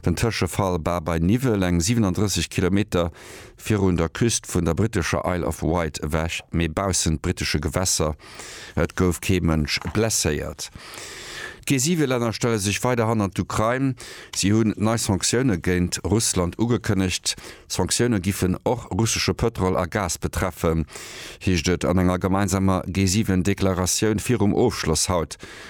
Den Tëschefall Ba bei Niwwel, eng 37 Kilometer virun der Küst vun der brittescher Isle of Wight ewech, mee baussent brittesche Gewässer. Et gouf kee Mënsch blesséiert. D'G7-Länner stelle sech weider hannert d'Ukrain. Si hunn nei Sanktioune géint Russland ugekënnegt. D'Sanktioune giffen och russesche Pëtrol a Gas betreffen, heescht et an enger gemeinsamer G7-Deklaratioun virum Ofschloss haut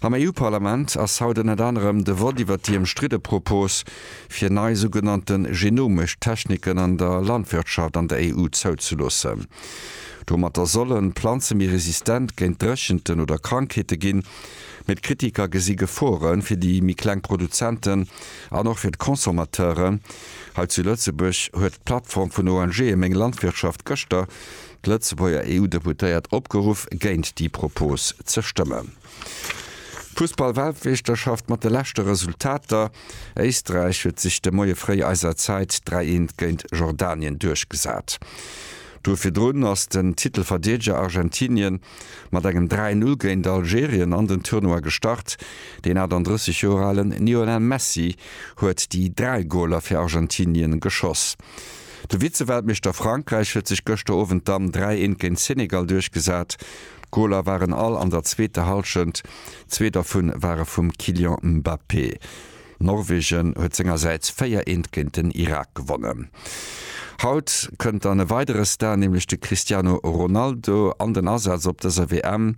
Am EU-Parlament ass haut ënnert anerem de Vott iwwert déi ëmstridde Propos, fir nei sougenannte genomesch Techniken an der Landwirtschaft an der EU zouzeloossen. Domatter sollen d'Planze méi resistent géint Dréchenten oder Krankheete ginn. Mee d'Kritiker gesi Gefore fir déi méi kleng Produzenten an och fir d'Consommateuren. Hei zu Lëtzebuerg huet d'Plattform vun ONGe Meng Landwirtschaft gëschter d'Lëtzebuerger EU-Deputéiert opgeruff, géint déi Propose ze stëmmen. Fussball-Weltmeeschterschaft mat de leschte Resultater, Éisträich huet sech de Moie fréi eiser Zäit 3 Eent géint Jordanien duerchgesat. D'Woch virdrun ass den Titelverdeedeger Argentinien mat engem 3 Null géint Algerien an den Tournoi gestart. Deen 38 Joer alen Lionel Messi huet déi 3 Goler fir Argentinien geschoss. De Vize-Weltmeeschter Frankräich huet sech gëschter Owend dann 3 Eent géint Senegal duerchgesat. D'Goler waren all an der zweeter Hallschent, zwee dervu ware vum Kylian Mbappé. Norwegen huet sengersäits 4 Eent géint den Irak gewonnen. Haut kënnt dann e weidere Star, nämlech de Cristiano Ronaldo an den Asaz op dëser WM.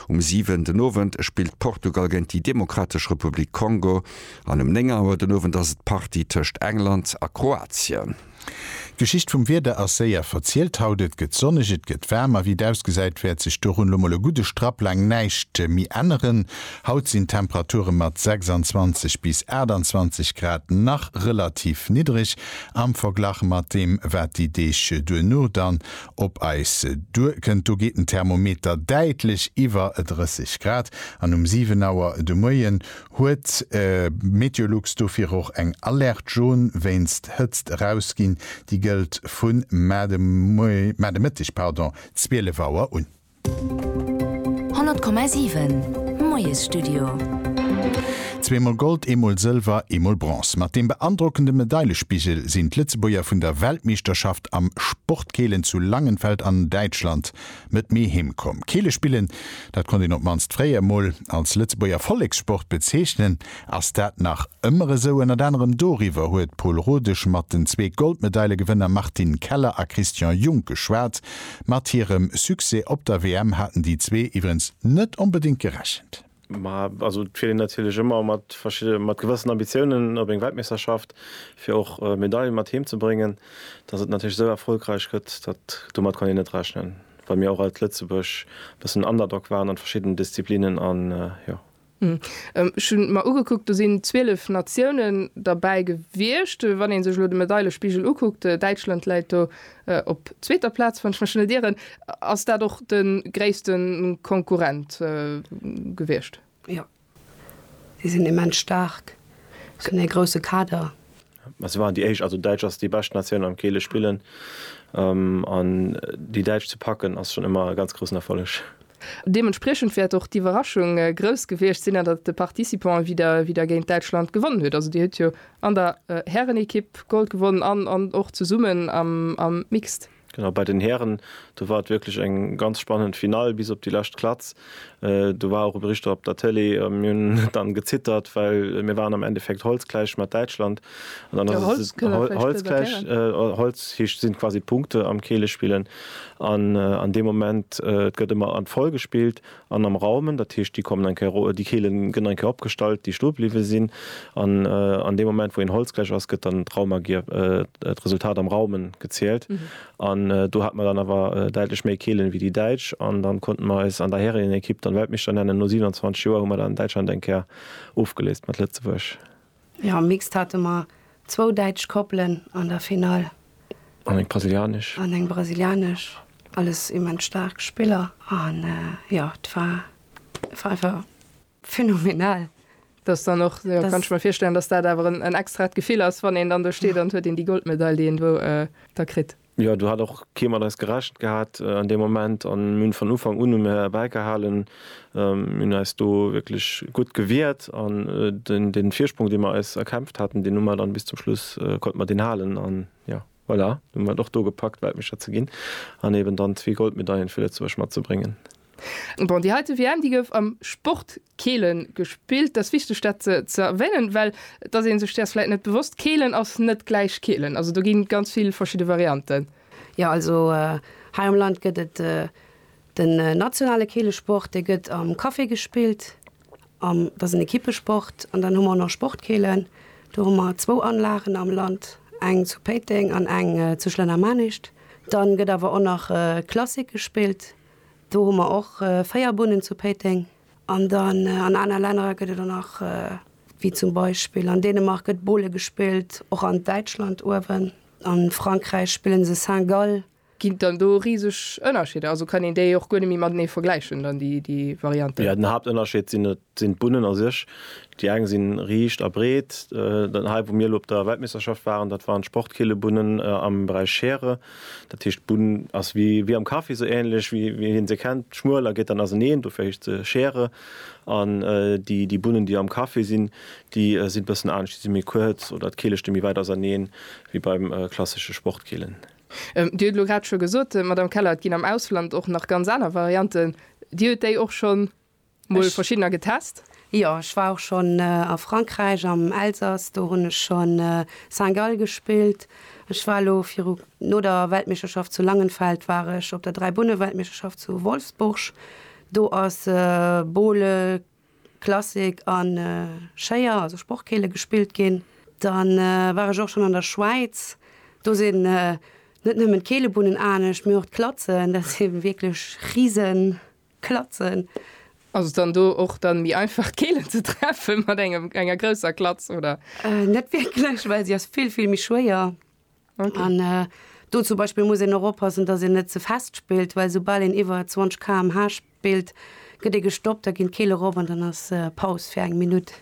Um 7 den Owend spillt Portugal géint déi Demokratesch Republik Kongo. An um 9 Auer den Owend ass et d'Partie tëscht England a Kroatien. D'Geschicht vum Wieder ass séier verzielt haut. Et gëtt sonneg, et gëtt waarm a wéi et ausgesäit wäert sech dorun lo mol e gudde Strapp laang näischt méi änneren. Haut sinn d'Temperature mat 26 bis 28 Grad nach relativ niddreg am Verglach mat deem wat déi Deeg duerno dann op eis duer kënnt. Do geet den Thermometer däitlech iwwer 30 Grad an um 7 Auer de Moien huet Meteolux dofir och eng Alerte jaune wéinst Hëtzt erausginn. Déi gëllt vu mar de Mëtteg 12 Auer un. 100,7 Moiesstudio. Zweemol Gold, eemol Sëlwer, eemol Bronze, mat deem beandrockende Medailespigel sinn d'Lëtzebuerger vun der Weltmeeschterschaft am Sportkeelen zu Langenfeld an Däitschland Net méi heem komm. Keele spillen, dat konnt een op d'mannst fréier emol als Lëtzebuerger Vollekssport bezeechnen. Ass dat nach ëmmer esou? Ënnert anerem doriwwer huet d'Pol Rodesch mat den zwee Goldmedailegewënner Martine Keller a Christian Junk geschwat. Mat hirem Succès op der WM haten déi zwee iwwerens net onbedéngt gerechent. Ma also et fiert een natierlech ëmmer mat verschidde mat gewëssen Ambitiounen op eng Weltmeeschterschaft, fir och Medailen mat heem ze bréngen. Datt et natierlech esou erfolgräich gëtt, dat domat kann een net rechnen, well mir och als Lëtzebuerg e bëssen Underdog waren an verschiddenen Disziplinen an jo. Ech hunn et mer ugekuckt, do sinn 12 Natiounen derbäi gewiescht, wann ee sech elo de Medailespigel ukuckt, Däitschland läit do Op zweeter Plaz, wann ech mech net ieren, ass dat och de gréisste Konkurrent gewiescht. Jo, si sinn immens staark, si hunn ee grousse Kader. Mä si waren déi éischt. Also Däitsch ass déi bescht Natioun am Keele spillen an déi Däitsch ze packen ass schonn ëmmer e ganz groussen Erfolleg. Deementspriechend wäert och d'Iwwerraschung grouss gewiescht sinn, datt de Participant wieder géint Däitschland gewonnen huet. Also Dir hutt jo an der Härenekipp Gold gewonnen an och zesummen am Mixed. Genau, bei den Hären, do war et wierklech eng ganz spannend Finall bis op déi lescht Klatz. Do war och e Bericht drop op der Tëlee a mir hunn dann gezittert, well mir waren am Endeffekt holzgläich mat Däitschland. Holzgläich sinn quasi d'Punkte am Keelespillen. An an deem Moment, et gëtt ëmmer an d'Voll gespillt an am Raumen, dat heescht, déi kommen eng Kéier ro-, déi Keele gëtt eng Kéier opgestallt, déi stoe bliwwe sinn. An an deem Moment, wou een Holz gläich ass, gëtt dann d'Raumagier, d'Resultat am Raumen, gezielt. An do hate mer dann awer däitlech méi Keelen wéi déi Däitsch an dann konnten mer eis an der Härenenekipp dann Weltmeeschter nennen. No 27 Joer hu mer dann Däitschland eng Kéier ofgeléist mat Lëtzebuerg. Jo, am Mixed hate mer zwou däitsch Koppelen an der Finall. An eng brasilianesch. An eng brasilianesch. Alles immens staark Spiller an jo, et war einfach phenomenal. Dass dann och, jo, kann ech mer virstellen, dass dat awer en extraet Gefill ass, wann een dann do steet an et huet een déi Goldmedail, déi een do da kritt. Jo, do hat och kee mat eis gerechent gehat an deem Moment an mir hunn vun Ufank un hunn mir bäigehalen. Mir hunn eis do wierklech gutt gewiert an dee Virsprong, dee mir eis erkämpft haten, deen hu mir dann bis zum Schluss, konnte mir deen halen an jo, voilà, do hu mir et och do gepackt, Weltmeeschter ze ginn an eben dann zwee Goldmedaillen fir Lëtzebuerg matzebréngen. Bon, déi heite WM, déi gouf am Sport Keelen gespillt. Dass wichteg dat ze erwänen, well dass een sech däers vläit net bewosst, Keelen ass net gläich Keelen. Also do ginn ganz vill verschidde Varianten. Jo also hei am Land gëtt et den nationale Keelesport, dee gëtt am Café gespillt, an dat ass en Ekippesport. An dann hu mer och nach Sportkeelen, do hu mer zwou Anlagen am Land, eng zu Péiteng an eng zu Schlennermanischt. Dann gëtt awer och nach Klassik gespillt, Do hu mer och véier Bunnen zu Péiteng. An dann an aner Länner gëtt et och nach, wéi zum Beispill an Dänemark gëtt Bowle gespillt, och an Däitschland uewen, a Frankräich spille se Saint-Gall. Ginn et dann do riseg Ënnerscheeder? Also kann een déi och guer net méi matenee vergläichen dann, déi Varianten? Jo, den Haaptënnerscheed sinn et Et sinn d'Bunnen a sech, déi eng si riicht a breet, hei wou mir elo op der Weltmeeschterschaft waren, dat waren d'Sportkeelebunnen am Beräich Schere. Dat heescht d'Bunn ass wéi am Kaffi, esou änlech wéi een se kennt, schmuel a geet dann auseneen, dofir heescht se Schere. An déi Bunnen déi am Kaffi sinn, déi si bëssen anescht, déi si méi kuerz oder d'Keele sti méi wäit auserneen wéi bei klassesche Sportkeelen. Dir huet elo grad scho gesot, Madame Keller, et ginn am Ausland och nach ganz aner Varianten. Dir huet déi och schonn mol verschiddener getest. Jo, ech war och schonn a Frankräich am Elsass, do hunn ech scho Saint-Gall gespillt. Ech war elo viru no der Weltmeeschterschaft zu Langenfeld war ech op der Dräibunne-Weltmeeschterschaft zu Wolfsburg. Do ass Bowle, Klassik a Schéier, also Sportkeele gespillt ginn. Dann war ech och schonn an der Schwäiz, do sinn net nëmmen d'Keelebunnen anescht, mee och d'Klatzen, dat si wierklech Risen, Klatzen. Ass et dann do och dann méi einfach d'Keelen ze treffen mat engem enger grousser Klatz oder? Net wierklech, well se ass vill vill méi schwéier an do zum Beispill muss een och oppassen, dass een net ze fest spillt, well sou bal een iwwer 20 kmh spillt, gëtt ee gestoppt, da ginn d'Keele rop an dann ass Paus fir eng Minutt.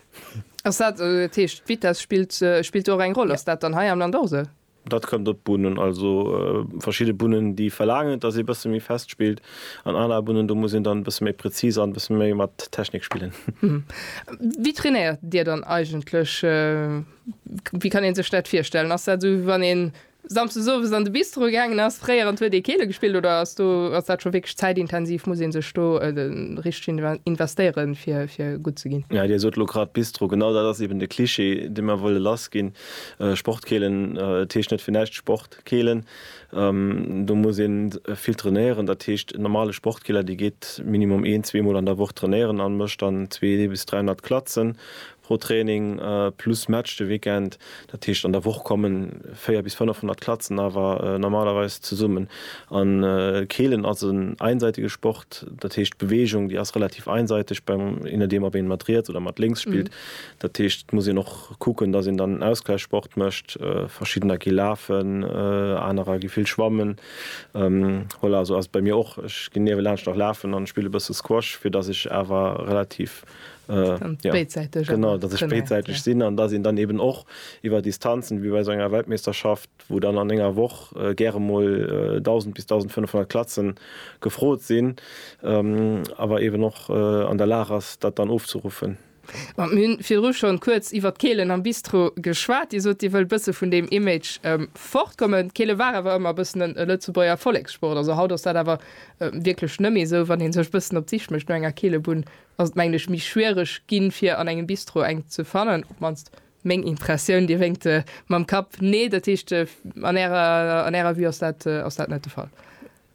Ass dat, dat heescht d'Vitess spillt spillt do och eng Roll? Ass dat dann hei am Land och esou? Dat kënnt op d'Bunnen. Also verschidde Bunnen, déi verlaangen, dass ee bësse méi fest spillt, an aner Bunnen, do muss een dann e bësse méi präzis an e bësse méi mat Technik spillen. Wéi trainéiert Dir dann eigentlech? Wéi kann ee sech dat virstellen? Ass dat esou, wéi wann ee samsdes owes an de Bistro gaangen ass, fréier, an huet ee Keele gespillt? Oder ass do, ass dat scho wierklech zäitintensiv? Muss ee sech do richteg investéieren, fir gutt ze ginn? Dir sot elo grad Bistro. Genau dat ass eeben de Cliché, dee mer wëlle lassginn. Sportkeelen, et heescht net fir näischt Sportkeelen. Do muss ee vill trainéieren. Dat heescht en normale Sportkeeler, dee geet minimum een, zwee Mol an der Woch trainéieren a mécht dann 200 bis 300 Klatzen pro Training, plus Match de Weekend. Dat heescht an der Woch komme 400 bis 500 Klatzen awer normalerweis zesummen. A Keelen ass en einseitege Sport, dat heescht d'Beweegung déi ass relativ einseiteg beim, je nodeem ob ee mat riets oder mat lénks spillt. Dat heescht, et muss een och kucken, datt een dann Ausgläichsport mécht. Verschiddener gi lafen, anerer gi vill schwammen. Voilà, esou ass et bei mir och. Ech ginn niewelaanscht nach lafen an spille bësse Squash, fir datt ech awer relativ, jo, genau, datt ech béidsäiteg sinn an datt een dann eben och iwwer Distanzen, wéi bei esou enger Weltmeeschterschaft, wou dann an enger Woch gäre emol 1.000 bis 1.500 Klatzen gefrot sinn, awer eben och an der Lag ass, dat dann ofzeruffen. Bon, mir hunn virdru schonn kuerz iwwert d'Keelen am Bistro geschwat. Dir sot, dir wëllt bësse vun deem Image fortkommen. D'Keele war awer ëmmer bëssen e Lëtzebuerger Vollekssport. Also haut ass dat awer wierklech nëmmi esou. Wann een sech bëssen op d'Sich mécht no enger Keelebunn, ass et mengen ech méi schwiereg ginn, fir an engem Bistro eng ze fannen. Op d'mannst meng Impressioun. Dir wénkt mam Kapp, Nee, dat heescht an ärer, an ärer Vue ass dat, ass dat net de Fall?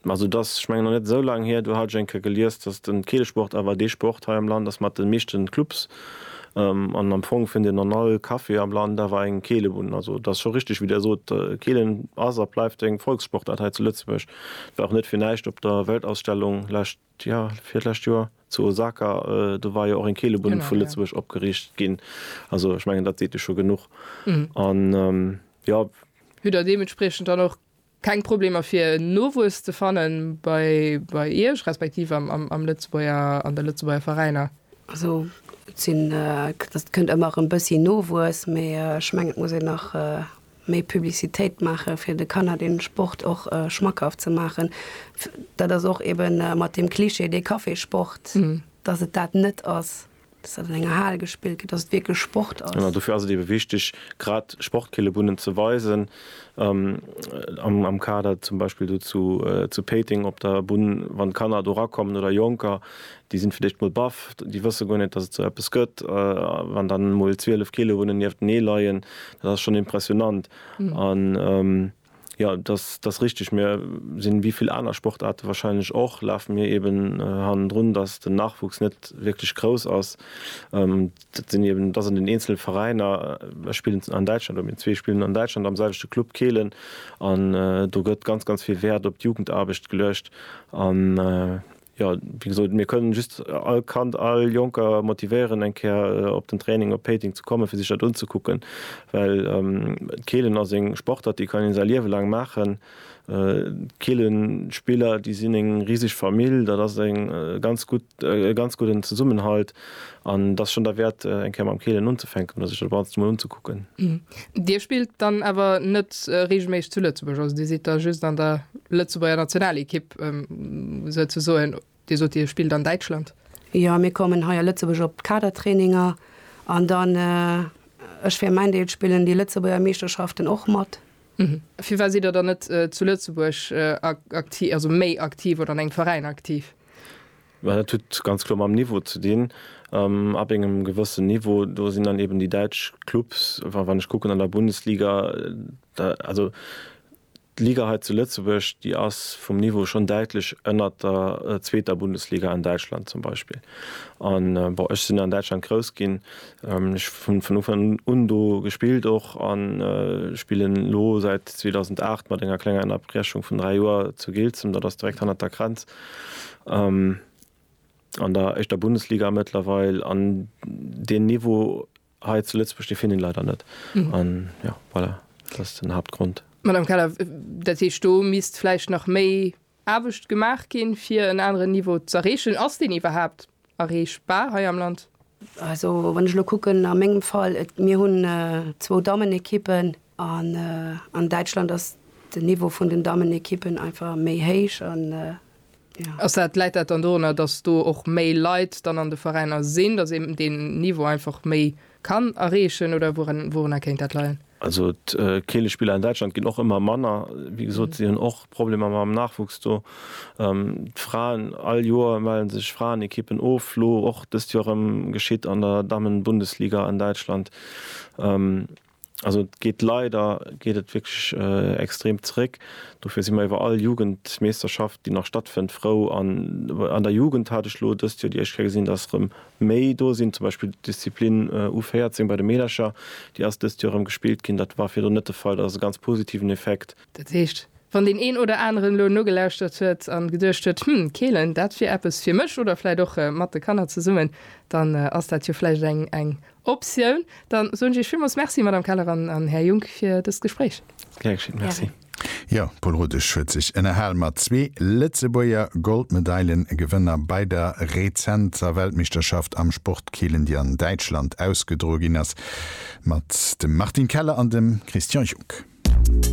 Also et ass, ech mengen, nach net esou laang hier, do hat ech eng Kéier gelies, datt den Keelesport awer dee Sport hei am Land ass mat de meeschten Clubs. An am Fong fënnt een an all Café am Land awer eng Keelebunn. Also et ass scho richteg, wéi Dir sot, Keelen ass a bleift eng Volkssportaart hei zu Lëtzebuerg. Et war och net fir näischt op der Weltausstellung lescht, jo, virlescht Joer zu Osaka, do war jo och eng Keelebunn vu Lëtzebuerg opgeriicht ginn. Also ech mengen, dat seet jo scho genuch. An, jo. Hutt Der deementspriechend dann och Keng Problemer fir Nowuess ze fannen bei Iech, respektiv am Lëtzebuerger, an de Lëtzebuerger Veräiner? Also et sinn, et kënnt ëmmer erëm e bëssi Nowuess, mee ech mengen et muss een nach méi Publicitéit maache fir de Kanner dee Sport och schmackhaft ze maachen. Dat ass och eeben mat deem Klischee, dee Kaffissport, datt et dat net ass. dass dat an enger Hal gespillt gëtt, dass et wierklech Sport ass. Genau, dofir ass et eebe wichteg, grad Sportkillebunnen ze weisen. Am Kader zum Beispill do zu Péiteng op der Bunn, wann d'Kanner do erakommen oder Jonker, déi sinn fir d'éischt mol baff, déi wësse guer net, dass et sou eppes gëtt. Wann dann mol 12 Killebunnen nieftenee leien, dat ass schonn impressionant. Jo, dass ass richteg. Mir sinn, wéi vill aner Sportaarte wahrscheinlech och, lafe mir eben hannendrun, dass den Nachwuchs net wierklech grouss ass. Dat sinn eben, et ass an den eenzele Veräiner. Ech spillen an Däitschland oder mir zwee spillen an Däitschland am selwechte Club Kehlen an do gëtt ganz, ganz vill Wäert op d'Jugendaarbecht geluecht. Jo, wéi gesot, mir kënnen just all Kand, all Jonker motivéieren, eng Kéier op den Training op Péiteng ze kommen, fir sech dat unzekucken, well d'Keelen ass eng Sportart, déi kann ee säi Liewe laang maachen. D'Keelenspiller, déi sinn eng riseg Famill, dat ass e ganz gudden Zesummenhalt. An et ass schonn derwäert, eng Kéier mam Keelen unzefänken oder sech dat Ganzt emol unzekucken. Dir spillt dann awer net reegelméisseg zu Lëtzebuerg, also Dir sidd da just an der Lëtzebuerger Nationalekipp souzesoen. Dir sot, Dir spillt an Däitschland. Jo, mir kommen hei a Lëtzebuerg op d'Kadertraininger an dann, ech fir mäin Deel, spillen déi Lëtzebuerger Meeschterschaften och mat. Firwat sidd Der dann net zu Lëtzebuerg aktiv, also méi aktiv oder an engem Veräin aktiv? Mä dat huet ganz kloer mam Niveau ze dinn. Ab engem gewëssen Niveau, do sinn dann eben déi däitsch Clubs, wa, wann ech kucken an der Bundesliga, da, also d'Liga hei zu Lëtzebuerg, déi ass vum Niveau schonn däitlech ënnert der zweeter Bundesliga an Däitschland zum Beispill. An, bon, ech sinn an Däitschland grouss ginn, ech hunn vun Ufank un do gespillt och an spillen elo säit 2008, mat enger klenger Ënnerbrechung vun dräi Joer, zu Giltzem, dat ass direkt hannert der Grenz. an der éischter Bundesliga mëttlerweil an deen Niveau hei zu Lëtzebuerg dee finn een leider net an jo voilà dat ass den Haaptgrond. Madame Keller, dat heescht do misst vläicht nach méi Aarbecht gemaach ginn, fir en aneren Niveau z'erreechen. Ass deen iwwerhaapt Erreechbar hei am Land? Also wann ech elo kucken a mengem Fall, et mir hunn zwou Dammenekippen an an Däitschland ass den Niveau vun den Dammenekippen einfach méi héich an jo. Ass dat, läit dat dann dorunner, datt do och méi Leit dann an de Veräiner sinn, datt eben deen Niveau einfach méi Kann erreechen oder wourunner kéint dat leien? Also d'Keelespiller an Däitschland ginn och ëmmer manner. Wéi gesot, si hunn och Problemer mam Nachwuchs do. D'Fraen, all Joer melle sech Fraenekippen of, elo och dëst Joer erëm, geschitt an der Dammenbundesliga an Däitschland. Also et geet leider geet et wierklech extrem zeréck. Dofir si mer iwwer all Jugendmeeschterschaft, déi nach stattfënnt, frou. An an der Jugend hat ech elo dëst Joer déi éischt Kéier gesinn, datt erëm méi do sinn. Zum Beispill d'Disziplin U14 bei de Meedercher, déi ass dëst Joer erëm gespillt ginn. Dat war virdrun net de Fall. Dat ass e ganz positiven Effekt. Dat heescht, wann deen een oder aneren elo nogelauschtert huet a geduecht huet, Hm, Keelen, dat wier eppes fir mech oder vläicht och mat de Kanner zesummen, dann ass dat jo vläicht eng Optioun. Dann soen ech Iech villmools Merci, Madame Keller an Här Junck, fir dëst Gespréich. Gär geschéen. Merci. Jo, Paul Rudesch huet sech ënnerhal mat zwee Lëtzebuerger Goldmedailen-Gewënner bei der rezenter Weltmeeschterschaft am Sportkeelen, déi an Däitschland ausgedroe ginn ass, mat dem Martin Keller an dem Christian Junck.